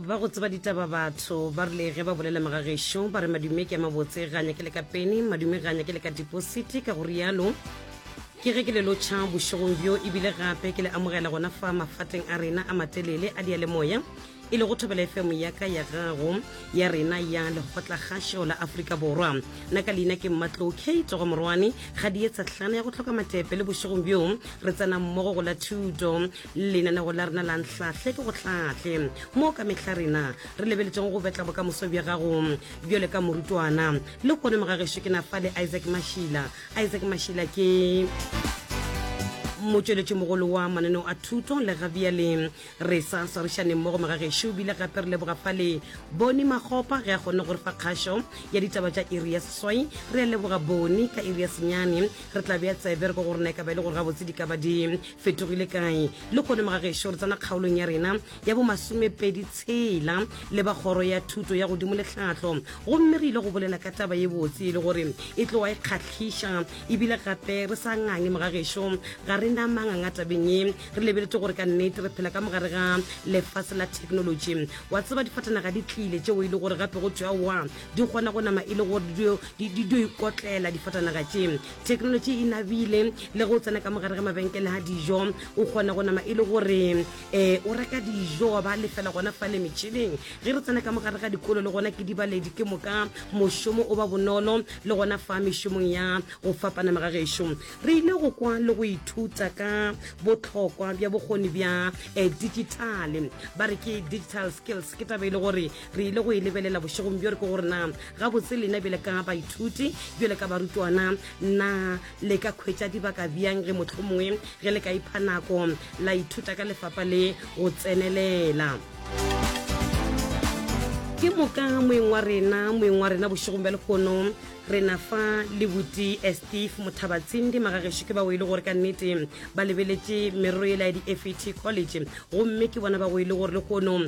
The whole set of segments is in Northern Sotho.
ba go tseba ditaba batho ba rile ge ba bolela magagešo ba re madume ke a mabotse ga nyake le ka pene madume ga nyake le ka dipositi ka go rialo ke ge ke le lotšha bošegong bjo ebile gape ke le amogela gona fa mafatleng a rena a matelele a dialemoya e le go thobela efemo yaka ya gago ya rena ya lekgotlakgašo la aforika borwa nna ka leina ke mmatlo k togo morwane ga di etsa tlhana ya go tlhoka matepe le bošegong bjo re tsena mmogo go la thuto lenanego la rena la nhlahle ke go hlahle mo ka mehla rena re lebeletseng go betla bokamoso bja gago bjale ka morutwana le kone mogagešo ke na fa le isaac mashila isaac mashila ke motšweletši mogolo wa mananeo a thuto le ga bjale re sa swarišaneng mo go magagešo bile gape re leboga fa le bone magopa ge a kgonne gore fa kgašo ya ditaba tša iri ya seswai re a leboga bone ka iri ya senyane re tla bea tsebe re ko go rena e ka ba e le gore gabotse di ka ba di Fetogile kae? Lehono mo ga gešo re tsena kgaolong ya rena ya bomasomepedi tshela le ba Kgoro ya Thuto ya Godimo le Tlhahlo, gomme re ile go bolela ka taba ye botse e le gore e tloga e kgahliša. Ebile gape re sa ngangye mo ga gešo, ga re na manganga tabeng ye. Re lebeletše gore ka nnete re phela ka mo gare ga lefase la theknolotši. Wa tseba, difatanaga di tlile tšeo e le gore gape go thwe aowa, di kgona go nama e le gore di dio ikotlela difatanaga tše. Technology e nabile le go tsena ka mogare ga mabenkele ga dijo o kgona go nama e le gore um o reka dijo wa ba lefela gona fa le metšhineng ge re tsena ka mogare ga dikolo le gona ke dibaledi ke moka mošomo o ba bonolo le gona fa mešomong ya go fapanama ga gešo re ile go kwa le go ithuta ka botlhokwa bja bokgoni bja um digitale ba re ke digital skills ke taba e le gore re ile go e lebelela bošegong bjo re ke gore na gabotse lena bjale ka baithuti bjale ka barutwana na le ka kgwetša dibaka bjang ge motlho mongwe ge le ka ipha nako la ithuta ka lefapa le go tsenelela ke moka moeng wa rena moeng wa rena bošegong bja lekgono re na fa lebuti eh, steve mothabatsindi magageso ke bao e le gore ka nnete ba lebeletše merero ela ya di-fet college gomme ke bona ba go e le gore le kono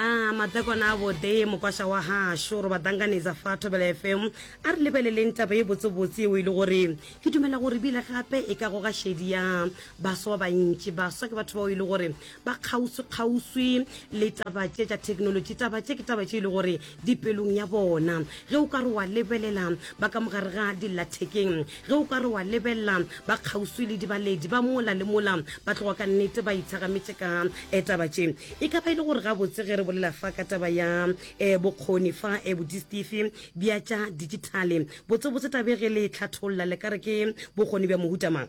A madakwana a botse, mokwaša wa gašo, re ba danganetsa fa Thobela FM. A re lebeleleng taba ye botsebotse yeo e le gore ke dumela gore bile gape e ka goga šedi ya baswa ba bantši. Baswa ke batho bao e le gore ba kgauswi-kgauswi le taba tše tša thekenolotši. Taba tše ke taba tše e le gore dipelong ya bona, ge o ka re wa lebelela ba ka mogare ga dillathekeng, ge o ka re wa lebelela ba kgauswi le dibaledi ba mola le mola, ba tloga ka nnete ba itshagametše ka um taba tše. E ka ba e le gore gabotse ge re bolela fa ka taba ya um bokgoni fa um bodistifi bja tša dijithale, botsebotse tabe ge le e tlhatholla le ka re ke bokgoni bja mohuta mang?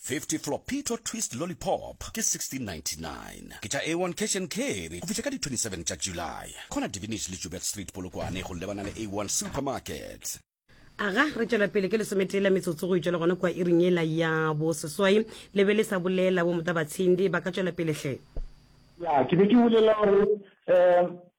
50 Flopito Twist Lollipop ke 1699 ke tša A1 Cash and Carry go fihla ka di 27 tša July. Corner Divinish le Joubert Street Polokwane go lebana le A1 Supermarket. Aga re tšwela pele ke lesometee la metsotso go itšwela gona kua iring yela ya bo seswai le be le sa bolela bo motabatshindi ba ka tšwela pele hle. Ya ke be ke bolela gore um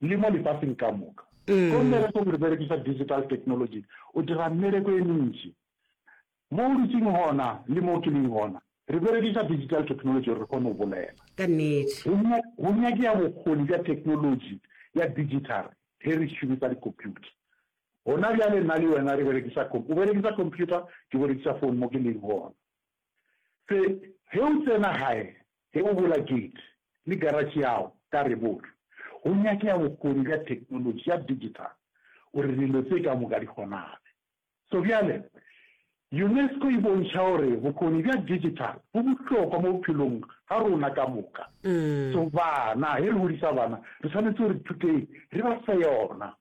le mo lefaseng ka moka. Ko mmereko re berekiša digital technology, o dira mmereko e mentši mo o dutšeng gona le mo ke leng gona, re berekiša digital technology gore re kgone go bolela. Ka nnete. Go nyakea bokgoni bja technology ya digital ge re šomiša dikhomphuta. Gona bjale nna le wena re berekiša, o berekiša khomphuta, ke berekiša fone mo ke leng gona. Se, ge o tsena gae, Ge o bola gate le garatšhe ya go ka reboto, go nyakega bokgoni bja theknolotši ya digital gore dilo tše ka moka di kgonage. So bjale, UNESCO e bontšha gore bokgoni bja digital bo bohlokwa mo bophelong ga rona ka moka. So bana, ge re godisa bana, re swanetše gore thutei re ba fe yona.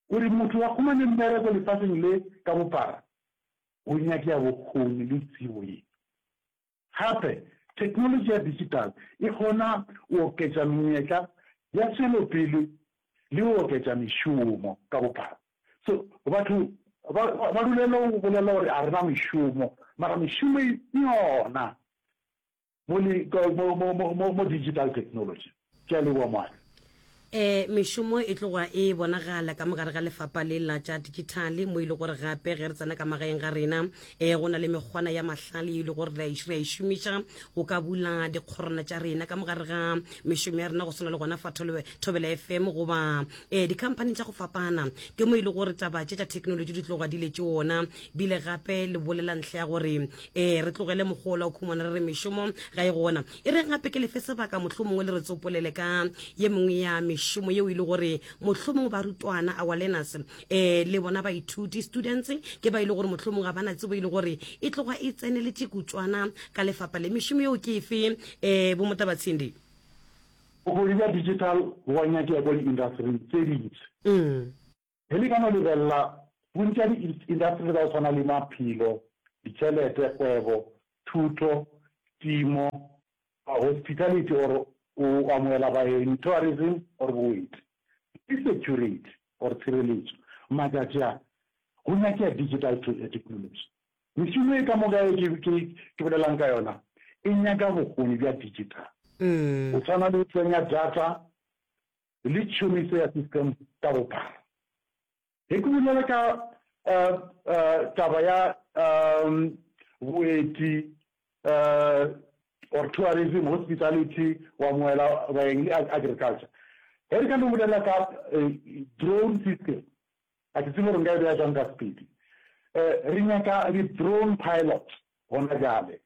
Gore motho a humane mmereko lefaseng le ka bophara, go nyakega bokgoni le tsebo ye. Gape, theknolotši ya digital e kgona go oketša menyetla ya tšwelopele le go oketša mešomo ka bophara. So, batho ba, ba, ba dulela go bolela gore ga re na mešomo, mara mešomo e yona mo, mo, mo, mo, mo, mo digital technology. Ke a leboa moabi. E, mešomo e tloga e bonagala ka mogare ga lefapa le la tša dikithale, mo e le gore gape ge re tsena ka magaeng ga rena, e, go na le mekgwana ya mahlale e le gore re a e šomiša go ka bula dikgorana tša rena ka mogare ga mešomo ya rena, go swana le gona fa Thobela FM goba e, dikhamphani tša go fapana. Ke mo e le gore taba tše tša thekenolotši di tloga di le tše ona bile gape le bolela ntlha ya gore e, re tlogele mokgwa ola o khumana re re mešomo ga e gona. E reng gape ke lefe sebaka mohlomongwe le re tsopolele ka ye mengwe ya mešomo yeo e le gore mohlomongwe barutwana our learners um le bona baithuti students ke ba e le gore mohlomongwe ga bana tsebo e le gore e tloga e tseneletše kutswana ka lefapa le mešomo yeo ke efe um eh, bomotabatshindi bokgoni bja digital bo a nyakega kwa diindasering tse dintsi mm. Ge le ka no lebelela, bontši ya diintaseteri tsa go swana le maphelo, ditšhelete, kgwebo, thuto, timo, hospitality or go amogela baeng, tourism or boeti, le security or tshireletso, matšatši a go nyakea digital technology. Mešomo e ka moka e ke bolelang ka yona e nyaka bokgoni bja digital, go swana le go tsenya data, le tšhomiso ya system ka bophara. Ge ke bolela ka taba ya boeti or tourism, hospitality, go amohela baeng le agriculture, ge re ka no bolela ka drone system, a ke tsebe gore nka e beya jwang ka sepedi. Re nyaka di-drone pilot gona jale,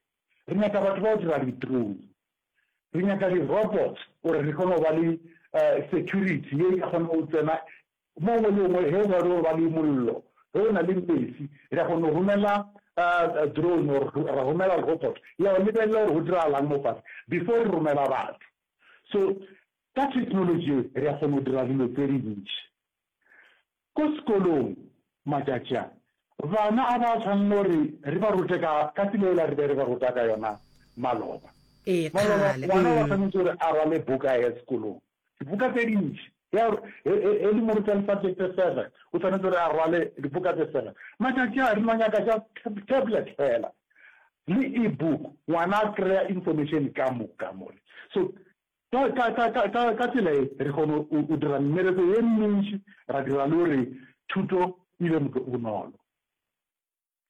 re nyaka batho ba go dira di-drone re nyaka di robot gore re kgone go ba le eh, security ye e ka kgona go tsena mo ngwe le ngwe he ba ba le mollo ge o na le mesi re kgona go romela eh, drone or ra romela robot ya o lebelela gore go diragalang mo fase before re romela batho so ka technology re kgona go dira dilo tse dintši Ko sekolong matšatši a, bana a ba tshwanele gore re ba rute ka, ka tsela yela re be re ba ruta ka yona maloba. Ee, Maloba, kgale. ngwana o a Umm. tshwanetse gore a rwale buka a ye sekolong. Dibuka tse dintši. Ge a, he, he, he le mo ruta le subject tse seven, o tshwanetse gore a rwale dibuka tse seven. Matšatši a, re no nyaka just tab, tablet fela, le e-book, ngwana a kry-a information ka moka mo. So, Ka, ka, ka, ka, ka, ka tsela ye, re kgona go, go dira mmereko ye mentši, ra dira le gore thuto e be moke o bonolo.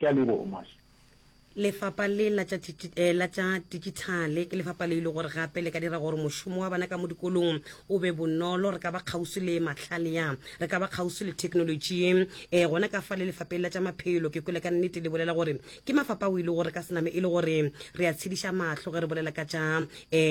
Ke a leboga, Mash. Lefapha le la tša tši, eh, la tša Dijithale ke lefapha le e le gore gape le ka dira gore mošomo wa bana ka mo dikolong o be bonolo. Re ka ba kgauswi le mahlale ya, re ka ba kgauswi le theknolotši ye. Eh, gona ka fa le lefapheng la tša maphelo, ke kwele ka nnete le bolela gore ke mafapa o ile gore ka sename e le gore re a tshediša mahlo ge re bolela ka tša um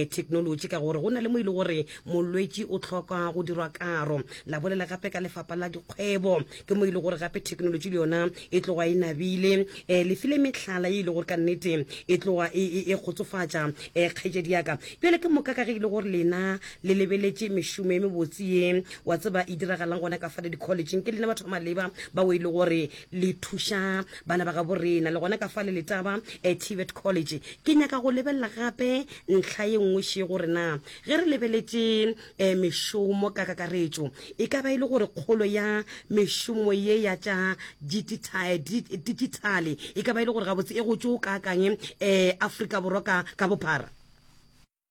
technology ka gore go na le mo e le gore molwetši o tlhoka go dirwa karo la bolela gape ka lefapa la dikgwebo ke mo e le gore gape technology le yona e tloga e nabile um eh, lefile metlhala e ile gore ka nnete e tloga e, e, e kgotsofatša um eh, kgejedi yaka bjale ke moka ka ge e le gore lena le lebeletše mešomo e mebotse ye wa tseba e diragalang gona ka fale di-collegeng ke lena batho ba maleba bao e le gore le thuša bana ba gabo rena le gona ka fa le letaba eh, tibet college ke nyaka go lebelela gape ntlha ye nngwe še gore na ge re lebeletse um mešomo ka kakaretšo e ka ba e le gore kgolo ya mešomo ye ya tša digitale e ka ba e le gore gabotse e go tšo kaakanye um eh, afrika borwa ka bophara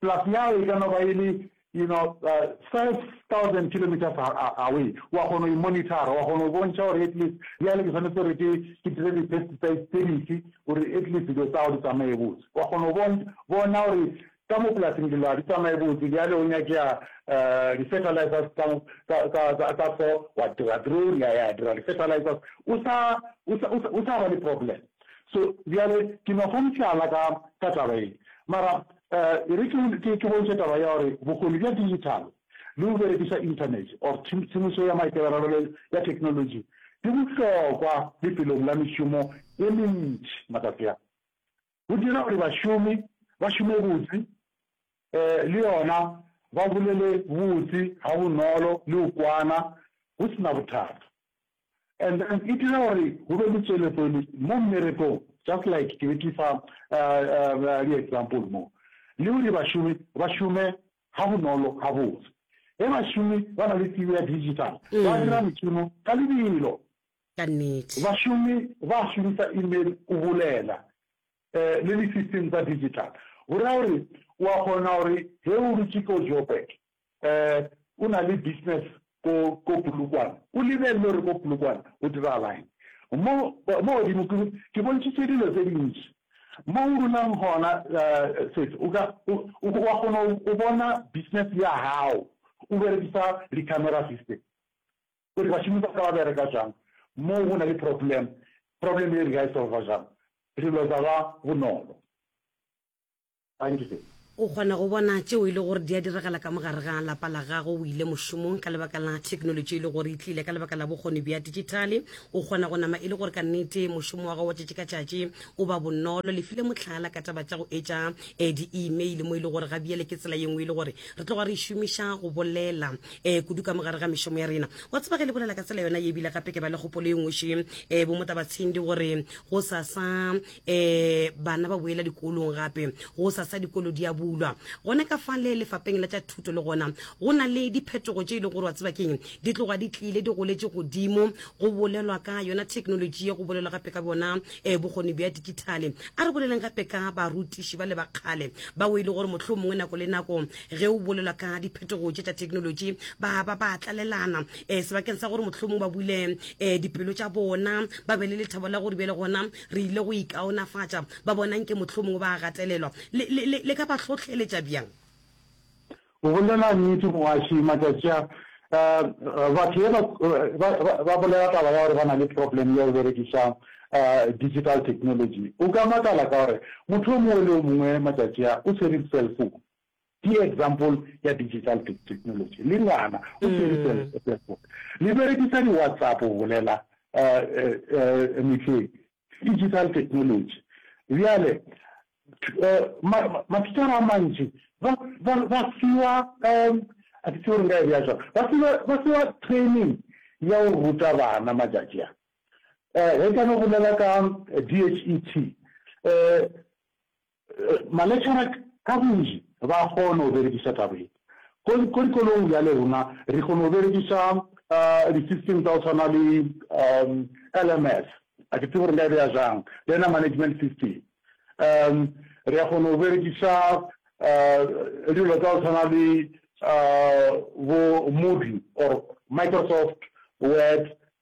Plus ya gagwe e ka no ba e le, you know, uh, five thousand kilometers a- a- away. Wa kgona go e monitara, wa kgona go bontšha gore at least bjale ke tshwanetse gore ke ke dire di-pesticides tse dife gore at least dilo tsago di tsamaye botse. Wa kgona go bon- bona gore ka mo polasing dilo ga di tsamaye botse, bjale go nyakea um di-fertilizers tsa mo- tsa- tsa- tsa- tsa so, wa dira drone ya ya dira di-fertilizers. O sa- o sa- o sa- o sa ba le problem. So, bjale, ke no fa mohlala ka, ka taba ye. Mara, uh, e re ke, ke, ke bontšhe taba ya gore bokgoni bja digital le go berekiša internet or tshemišo ya maikaberelo ya technology di bohlokwa lefelong la mešomo e mentši matsatsi a. Go dira gore bašomi ba šome botse, eh, le yona ba bolele botse ga bonolo le go kwana go sena bothata. And then e dira gore go be le tswelepele mo mmerekong just like ke be ke fa di-example mo le gore bašomi ba šome ga bonolo ga botse ge bašomi ba na le tsebo ya digital mm. ba dira mešomo ka lebelo bašomi ba šomisa email o bolela um le di-system tsa digital go raya gore wa kgona gore ge o dutse ko joburg O na le business ko ko Polokwane. O lebelele gore ko Polokwane go diragalaeng. Mo mo godimo ke ke bontšhitse dilo tse dintši. Mo o dulang gona Sesi o ka o wa kgona go bona business ya gago o berekisa di-camera system gore bašomi ba ka ba bereka jang mo go na le problem. Problem e re ka e solva jang re lwetsa ba bonolo. Gantši, o kgona go bona tšeo e le gore di a diragala ka mo gare ga lapa la gago. O ile mošomong ka lebaka la theknolotši e le gore e tlile ka lebaka la bokgoni bja dijithale. O kgona go nama e le gore ka nnete mošomo wa gago wa tšatši ka tšatši o ba bonolo. Le file mohlala ka taba tša go etša um di-email mo e le gore gabjale ke tsela ye nngwe e le gore re tloga re e šomiša go bolela um kudu ka mo gare ga mešomo ya rena. Wa tseba ge le bolela ka tsela yona ye ebile gape ke ba le kgopolo e nngwe še um bo Motabatshindi gore gosasa um bana ba boela dikolong gape go sasa dikolo di a bulwa gone ka fa le lefapeng la tša thuto le gona go na le diphetogo tše e le gore wa tseba keng di tloga di tlile di goletše godimo go bolelwa ka yona thekenoloji ye go bolelwa gape ka bona um eh, bokgoni bja digithale a re boleleng gape ka barutiši ba le ba kgale ba o e le gore motlho mongwe nako le nako ge o bolelwa ka diphetogo tše tša thekenoloji ba ba ba tlalelana um sebakeng sa gore motlho mongwe ba bule um dipelo tša bona ba be le lethabo la gore bjale gona Re ile go ikaonafatša, ba bona nke mohlomongwe ba a gatelelwa. Le, le, le, le ka ba hlohleletša bjang? O bolela nnete, mogwaši. Matšatši a, uh, batho ye ba, ba, ba, ba bolela taba ya gore ba na le problem ya go berekiša uh, digital technology. O ka makala ka gore motho o mongwe le o mongwe matšatši a o swere cellphone. Ke example ya digital technology. Le ngwana o tšerisele Facebook. Le berekisa di WhatsApp go bolela mehleng. Digital technology. Bjale mathicara a mantši ba fiwa a ke tsebe gore nka e bea jwang. Ba fiwa training ya go ruta bana matšatši a. Ge ka no bolela ka DHET Maletšana ka bontši ba a kgona go berekiša taba ye. Ko dikolong bjale rona re kgona go berekiša di-system tsa go tshwana le LMS, a ke tsebe gore nka e beya jang, Learner Management System. Re a kgona go berekiša dilo tsa go tshwana le bo Moodle or Microsoft Word,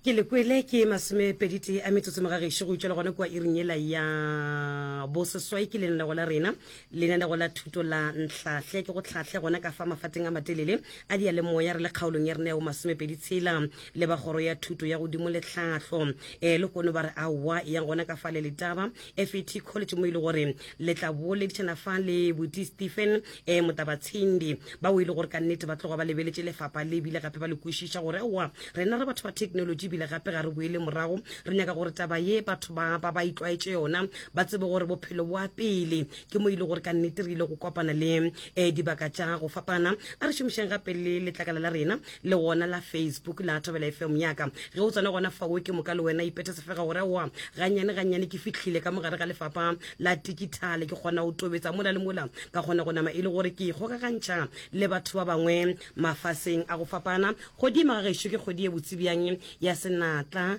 Ke le kwele ke masomepeditee a metsotso mo ga gešo go utšwa le gona kua iring yela ya boseswai ke lenanego la rena lenanego la thuto la ntlhahle ke go tlhahle gona ka fa mafateng a matelele a dia le moya re le kgaolong ya rena ya bomasomepedi tshela le ba kgoro ya thuto ya godimo le tlhahlo um le kono ba re aowa yang gona ka fa le letaba fet college mo e le gore le tla boleditšana fa le boti stephen um eh, motabatshindi ba o e le gore ka nnete ba tloga ba lebeletše lefapa le ebile gape ba le kwešiša gore owa rena re batho ba technology ebile gape ga re boele morago re nyaka gore taba ye batho ba ba itlwaetše yona ba tsebe gore bophelo boa pele ke mo e le gore ka nnete re ile go kopana le um dibaka tša go fapana a re šomišeng gape le letlakala la rena le gona la Facebook la Thabela FM yaka ge o tsena gona fawo ke moka le wena ipethe sefega gore aowa gannyane gannyane ke fihlile ka mogare ga lefapa la tikithale ke kgona go tobetsa mola le mola ka kgona go nama e le gore ke ikgokagantšha le batho ba bangwe mafaseng a go fapana godimo ga gešo ke kgodi e botsebjang ya senatla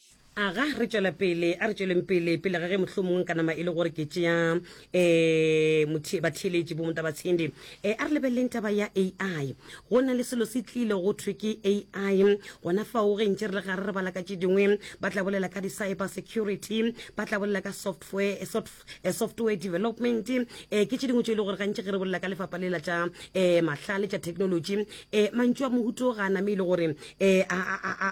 Aga re tšwela pele, a re tšweleng pele, pele ga ge mohlomongwe nka nama e le gore ke tšea um batheeletši bo Motabatshende. Um a re lebeleleng taba ya AI. Go na le selo se tlile go thwe ke AI, gona fao ge ntše re le gare re bala ka tše dingwe, ba tla bolela ka di-cyber security, ba tla bolela ka software, soft eh, software development um ke tše dingwe tše e le gore gantši ge re bolela ka lefapa lela tša um mahlale tša technology um mantšu a mohuto ga a name e le gore um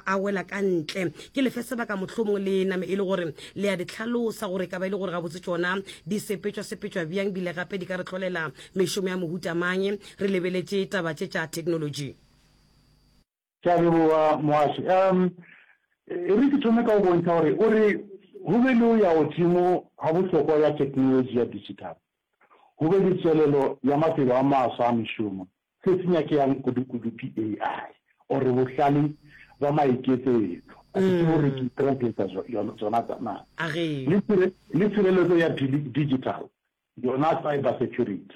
a wela ka ntle ke lefe sebaka mohlomong le name e le gore le ya di tlhalosa gore ka ba e le gore ga botse tsona di sepetšwa sepetšwa bjang bile gape di ka re tlholela mešomo ya mohuta mang re lebeletše taba tše tša technology Ke a leboga Mohasi. Um E re ke thome ka go bontšha gore o re go be le go ya godimo ga bohlokwa bja theknolotši ya digital, go be le tšwelelo ya mafelo a mafsa a mešomo, se se nyakegang kudu-kudu ke AI or bohlale bja maiketsetšo, a ke tsebe gore ke translate-a yona tsona na, le tshireletso ya digital yona cyber security.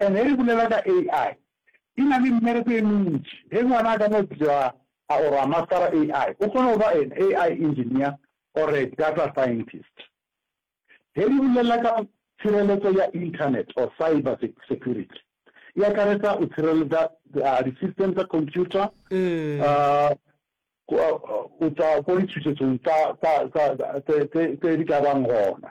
And ge re bolela ka AI, e na le mmereko e mentši. Ge ngwana a ka no bitšwa a or a mastera AI, o kgona go ba an AI engineer or a data scientist. Ge re bolela ka tshireletso ya Internet or cyber security, e akaretsa go tshireletsa di system tsa computer go tšwa ko ditšhošetšong tse di ka bang gona.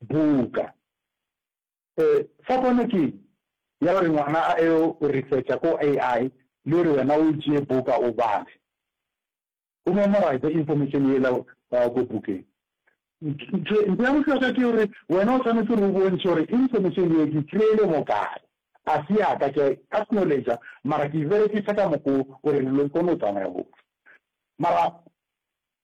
buka. E, fapano ke eng? Ya gore ngwana a eo o researcha ko AI le gore wena o tšee buka o bale, o memorize information yela ko bukeng. Ntho ya bohlokwa ke gore wena o tshwanetse gore o bontšhe gore information ye ke kry-ile mo kae. A se ya ka, ke a e acknowledge mara ke e berekisa ka mokgo gore dilo di kgone go tsamaya botse. Mara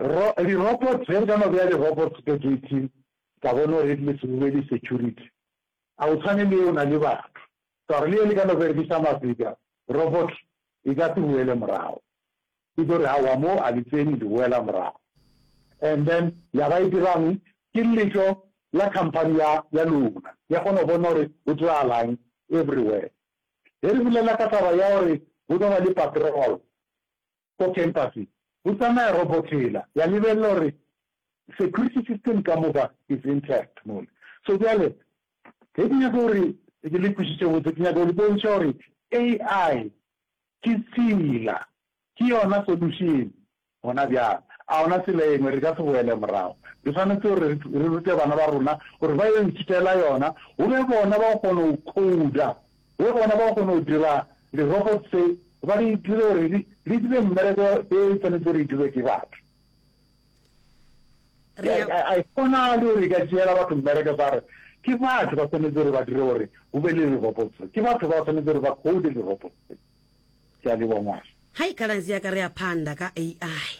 Ro, di robots, ge re ka no bea di robots ka gate, ka bona gore e tlile se di security, a o tshwane le e o na le batho, ka gore le e le ka no berekisa mafika, robot e ka se boele morago, e tlo re aowa mo a le tsene le boela morago, and then ya ba e dirang ke letšo la company ya, ya lona, ya kgona go bona gore go diragalang everywhere. Ge re bulela ka taba ya gore go tlo ba le patrol, Go khempase go tsamaya robothela ya lebelela gore security system ka moka is intact mole. So bjale ge ke nyaka gore ke le kwešiše botse, ke nyaka go le bontšha gore AI ke tsela, ke yona solution gona bjale. A gona tsela engwe, re ka se boele morago. Re swanetše gore re rute bana ba rona gore ba yo ithutela yona, go be bona ba kgona go coder Ge bona ba kgona go dira di-robot tse, ba di dire gore di dire mmereko e e tshwanetse gore e dirwe ke batho. Ga e kgonale gore e ka tšeela batho mmereko sa re ke batho ba tshwanetse gore ba dire gore go be le di-robot tse. Ke batho ba tshwanetse gore ba code di-robot tse. Ke a leboga ngwaga. Hai khaladzi yaka ri a phanḓa ka AI.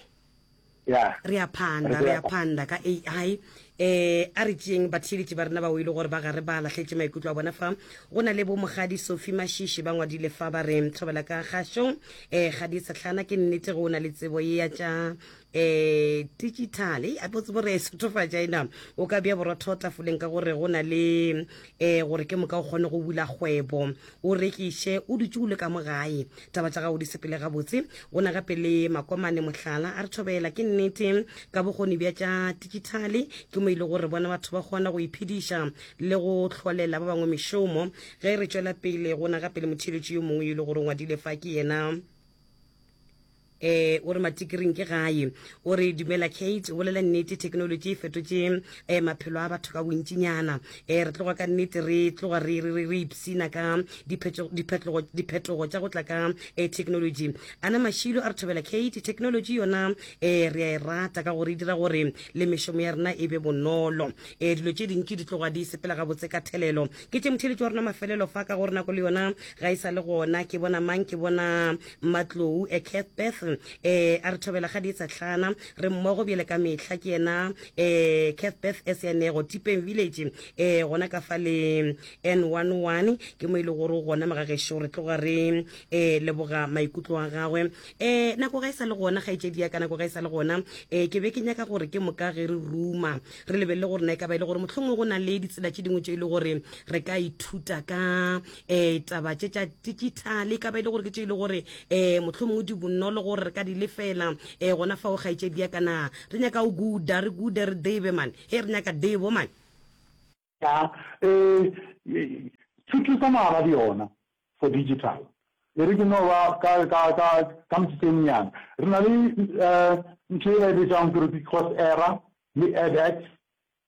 Yeah. re ya phanda re ya phanda ka ai eh a re tšeeng batheeletši ba rena ba oile gore ba gare ba lahletše maikutlo a bona fa go na le bo mogadi sofi mashishi ba ngwadile fa ba re thobela ka gašo um eh, gadi setlhana ke nnete go o na le tsebo ye ya tša um eh, digital a botse bore sethofatša ena o ka bja borotho tafoleng ka gore go na le um gore ke moka o kgone go bula kgwebo o rekiše o dutše o le ka mo gae taba tša gago di sepele gabotse go na gape le makomane mohlala a re thobela ke nnete ka bokgoni bja tša digitalli ke mo ile gore bona batho ba kgona go iphediša le go hlolela ba bangwe mešomo ge re tšwela pele go na gape le motheeletši yo mongwe yo e le gore ngwadile fa ke yena Ee, o re matikiring ke gae. O re, Dumela Kate, o bolela nnete, theknolotši e fetotše um maphelo a batho ka bontšinyana. Um re tloga ka nnete re tloga re, re, re, re ipshina ka diphetšo- diphetogo diphetogo tša go tla ka um theknolotši. A na mašilo a re thobela, Kate? Theknolotši yona um re a e rata ka gore e dira gore le mešomo ya rena e be bonolo. Um dilo tše dintši di tloga di sepela gabotse ka thelelo. Ke tšemotheletši wa rona mafelelo fa, ka gore nako le yona ga e sa le gona. Ke bona mang? Ke bona Matlou, eh, Cathbeth, eh, a re thobela ga di tsatlana, re mmogo bjele ka mehla, ke yena, eh, Cathbeth e se yanego, Tipeng Village, eh, gona ka fa le N11, ke mo e le gore gona magagešo re tloga re, eh, leboga maikutlo a gagwe. Eh, nako ga e sa le gona, kgaetšedi ya ka, nako ga e sa le gona, eh, ke be ke nyaka gore ke moka ge re ruma, re lebelele gore na e ka ba e le gore mohlomongwe go na le ditsela tše dingwe tše e le gore re ka ithuta ka um taba tše tša digital e ka ba e le gore ke tše e le gore um motlho mongwe di bonolo gore re ka di lefela um gona fa o gaetšedi ya kana re nyaka o guda re gude re debe mane e re nyaka debo mane um thuto tsa maabadi yona for digital e re ke no ba ka metsotso e menyana re na le um ntho e ba e betsang gore ke course era le edx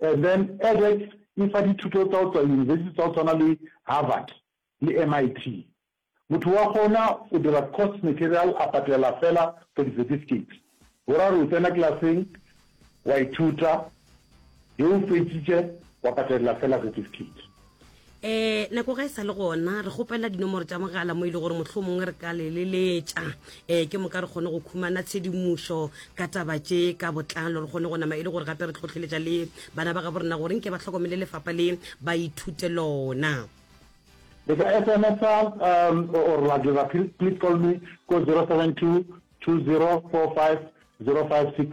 And then edx e fa dithuto tsa go tswa yunibesithi tsa go tshwana le Harvard le MIT. Motho wa kgona go dira course material a patela fela for di-certificate. Boraro o tsena klaseng, wa ithuta, ge o fetšitše wa patelela fela certificate. um nako ga e sa le gona re kgopela dinomoro tša mogala mo e le gore motlho mongwe re ka leleletša um eh, ke moka re kgone go khumana tshedimošo ka taba tše ka botlalo re kgone go nama e le gore gape re tlhotlheletša le bana ba gabo rena gore nke ba tlhokomele lefapa le ba ithute lona le ka smsa um, or la dira please call me ko 072 2045 056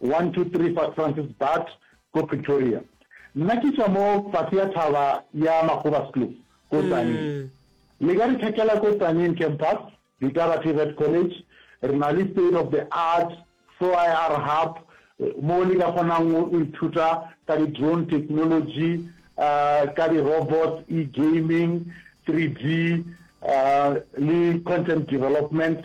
123 Fat Francis Baard ko Pretoria. Nna ke tšwa mo fase ya thaba ya Magobaskloof ko Tzaneen. Mm. Le ka re thekela ko Tzaneen campus, Ditaba TVET College, re na le state of the art SOIR hub mo le ka kgonang go ithuta ka di-drone technology uh, ka di-robots e-gaming 3d uh, le content development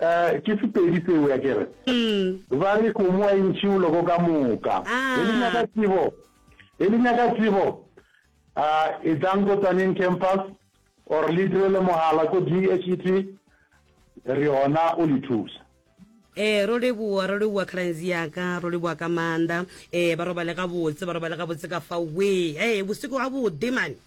Ee, ke Sepedi seo, ya ke re. Umm. Ba re kgomo a e ntšhe boloko ka moka. He le Aah. nyaka tsebo? He le nyaka tsebo? Aah, etlang ko Tsaneng Campus or le direle mogala ko DHET, re yona o le thusa. Ee, ro leboa, ro leboa Cruns ya ka, ro leboa ka maanda. Ee, ba robale gabotse, ba robale gabotse ka fao. Wee, hee, bosigo gabotde mane.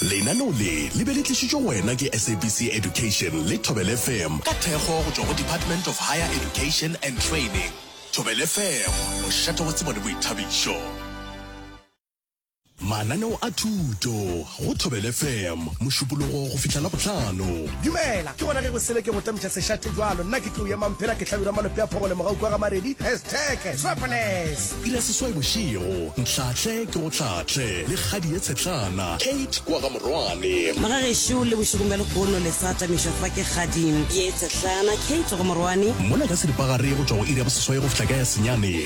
lenaneo le le be le tlišitšwe go wena ke sabc education le tobel fm ka thekgo go tšwa go department of higher education and training tobel fm mošate wa tsebo le boithabišo Mananeo a thuto go Thobel FM, Mošupologo go fihla Labohlano. Dumela, ke gona ge go sele ke go tamiša sešate jwalo. Nna ke tlou ya Mamphela, ke hlabirwa malope a phogole mogau kwa ga Maredi, hashtag Swapoles. Iri ya seswai bošego, Nhlahle ke go hlahle le kgadi ye tshetlana, Kate kwa ga Morwane. Maga gešo le bošegong bja lehono le sa tamišwa fa ke kgadi ye tshetlana, Kate go Morwane. Mola ka seripagare go tšwa go iri ya boseswai go fihla ka ya senyane.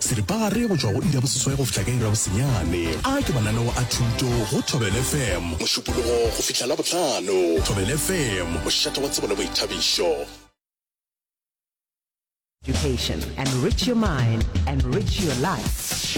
Seripagare go tšwa go iri ya boseswai go fihla ka iri ya bosenyane. A ke mananeo a thuto go Thobela FM mošupologo go fihla Labohlano. Thobela FM, mošate wa tsebo le boithabišo. Education. Enrich your mind. Enrich your life.